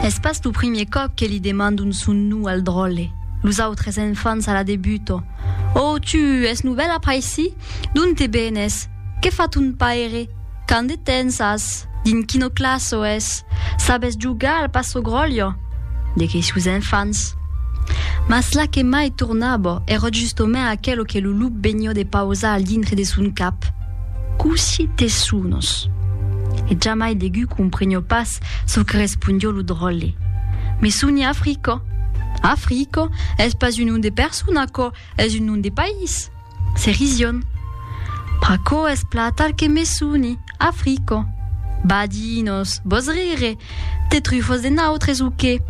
Es pas lo primier còp que li demandon son num al dròlle. Los autres enfants a la debuto. Oh, tu, es novèl a Paissi? D'ont te benes? Que fa ton paire? Quand de tens as? Dins quino classo es? Sabes jogar al passo gròllo? De quei sus enfants. Mas la que mai tornabo ero justomènt aquelo que lo lup vegnió de pausar al dintre de son cap, Coussi te sonos? E jamai degú comprenió pas çò que respondió lo dròlle. Me soni Africo. Africo es pas un nom de persona, aquò es un nom de país. Se rision. Pr'aquò es platar que me soni, Africo. Badinos, vos rire, te trufos de nautres o qué?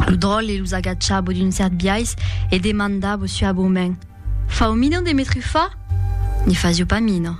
Lo dròlle los agachabo d'un cèrt biais e demandabo suaboment, Fau mina de me trufar? Ne fasio pas mina.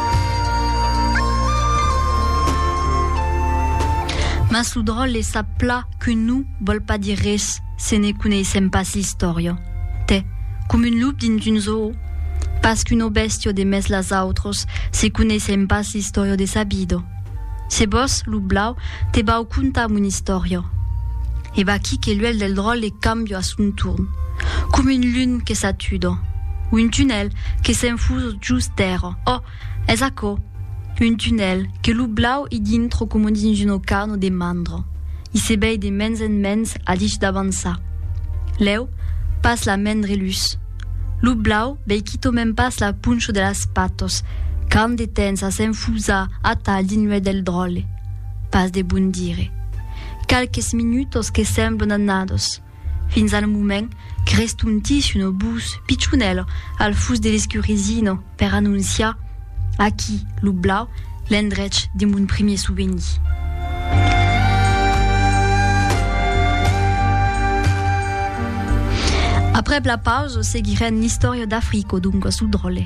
Mas lo dròlle sap pla qu'un num vòl pas dire res se ne coneissèm pas l'istòria. T'es com un lup dins un zoo, pas qu'uno bèstio de mès las autros se coneissèm pas l'istòria de sa vida. Se vos, lo blau, te vau contar mon istòria. E vaquí que l'uèlh del dròlle cambia a son torn, com un lun que s'atuda, un tunèl que s'enfusa just dera, oh, es aquò, un tunèl que lo blau i dintra coma dins un ocano de mandra, i se vei de mens en mens a dich d'avançar. Lèu, pas la mendre lutz. Lo blau vei quitòment pas la poncho de las patos, quand de tens a s'enfusar atal dins l'uèlh del dròlle. Pas de bon dire. Qualques minutos que semblan annados, fins al moment que restontissi un obús pichonèl al fus de l'escurisino, Per anonciar aquí lo blau l'endrech de mon primier souvenir. Aprèp la pausa seguirèn l'istòria d'Africo, doncas lo dròlle.